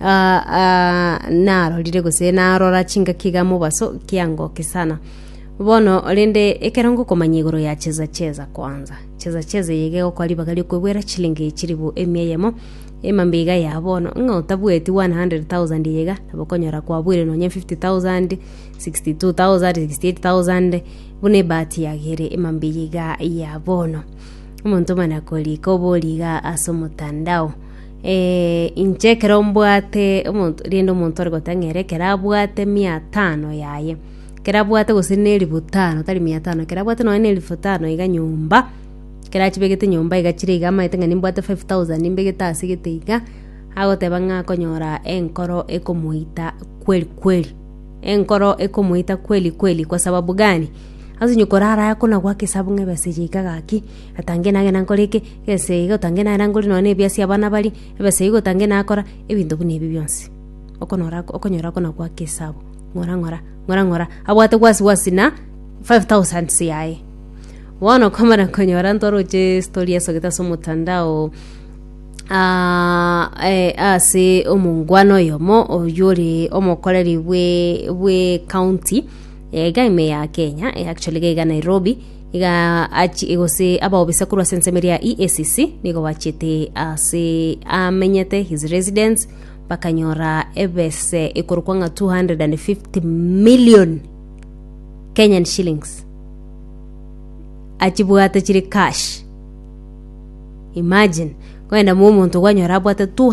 Aa, aa, narorire gose narora chingaki iga mobaso kiangoke sana. Bono rende ekero ngokomanya igoro ya cheza cheza kwanza. Cheza cheza eye iga egokora ribaga riokwebwera chilingi echiribu emia eyemo, emambe iga ya bono. Ng'a otabueti 100,000 eye iga, nabo okonyora kwabuire nonye 50,000, 62,000, 68,000, buna ebahati yagere emambe eye iga ya bono. Omonto omana korika obori iga as'omotandao. Ee, inche ekero mbwate omonto, rende omonto ore gotang'aa ere ekero abwate mia tano yaye, ekero abwate gose na elifu tano, tari mia tano, ekero abwate nonye na elifu tano iga nyomba, ekero achibegete nyomba iga chire iga amaete ng'a nimbwate five thousand nimbegete ase gete iga, agoteba ng'a akonyora enkoro ekomoita kweli kweli, enkoro ekomoita kweli kweli kwa sababu gani? Ase onye korara aya kona goaka esabu ng'a ebesa eye iga gaki, atange nagenda nkore eke. Eseigo tange narangori nonya ne ebiasi abana baria, ebeseigo tange nakora, ebinto buna ebi bionsi. Okonora okonyora kona gwake esabu, ng'ora ng'ora, ng'ora ng'ora, abwate wasi wasi na five thousands yaye. Bono okomana konyora ntwaroche estory esogete ase omotandao, ah eh ase omongwana oyomo oywo ore omokoreri bwe bwe ekaunti, iga ime ya Kenya, actually iga iga Nairobi. iga achi- gose abaobisa korwa ase ensemo eria ya EACC nigo bachete ase amenyete his residence bakanyora ebese ekorokwa ng'a 250 million Kenyan shillings achibwate chire cash imagine kogenda momonto kwanyora abwate 200